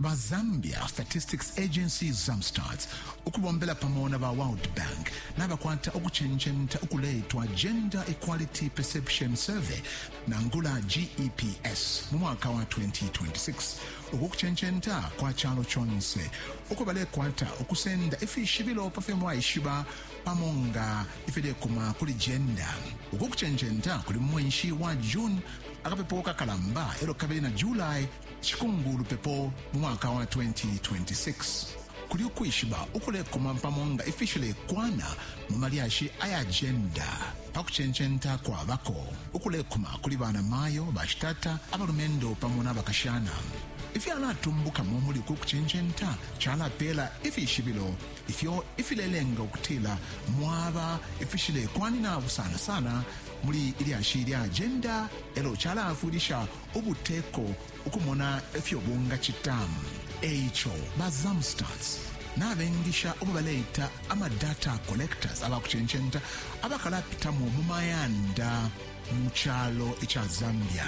Ba Zambia Statistics Agency, Zamstats, ukubombela pamo na ba World Bank nabakwata ukucencenta ukuleitwa Gender Equality Perception Survey, nangula GEPS, mu mwaka wa 2026. Uku kucencenta kwa calo conse uko balekwata ukusenda ifishibilo pa fyo mwaishiba pamo nga ifilekuma kuli jenda. Uku kucencenta kuli mu mwenshi wa June akapepo kakalamba elo kabili na July Cikumbulu lupepo mu mwaka wa 2026 kuli ukwishiba ukulekuma pamo nga ifishilekwana mu malyashi aya jenda pa kucencenta kwabako ukulekuma kuli bana mayo, bashitata, abalumendo pamo na bakashana. Ifyalatumbukamo muli uku kucencenta calapeela ifishibilo ifyo ifilelenga ukutila mwaba ifishilekwanina busana sana muli ilyashi lya jenda elo calaafwilisha ubuteko ukumona ifyo bungacita. E ico ba Zamstats nabengisha ubo baleita ama data collectors aba kucencenta abakalapitamo mu mayanda mu calo ica Zambia.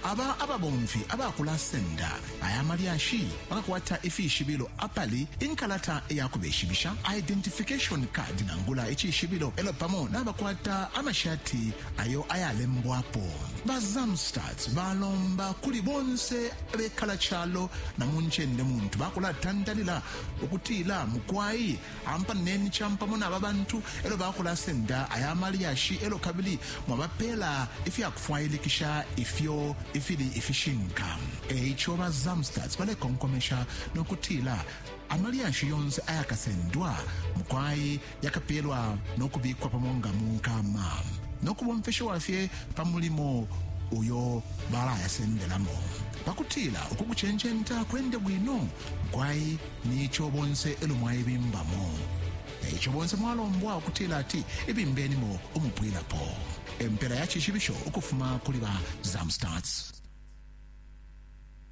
Aba ababomfi abakulasenda aya malyashi bakakwata ifishibilo apali inkalata ya kubeshibisha, identification card nangula icishibilo, e lyo pamo nabakwata amashati ayo ayalembwapo ba zamstat balomba kuli bonse abekala calo na mu ncende muntu bakulatantalila ukutila mukwai ampaneni campamo naba bantu elo bakulasenda aya malyashi elo kabili mwabapela ifyakufwailikisha ifyo ifili ifishinka eico ba zamstat balekonkomesha nokutila amalyashi yonse ayakasendwa mukwai yakapeelwa no kubikwa pamo nga mu nkama no kubomfeshiwa fye pa mulimo uyo balayasendelamo pa kutila uku kucencenta kwende bwino kwai ni ico bonse elo mwaibimbamo e ico bonse mwalombwa ukutila ati ibimbenimo umupwilapo empela ya cishibisho ukufuma kuli ba zamstats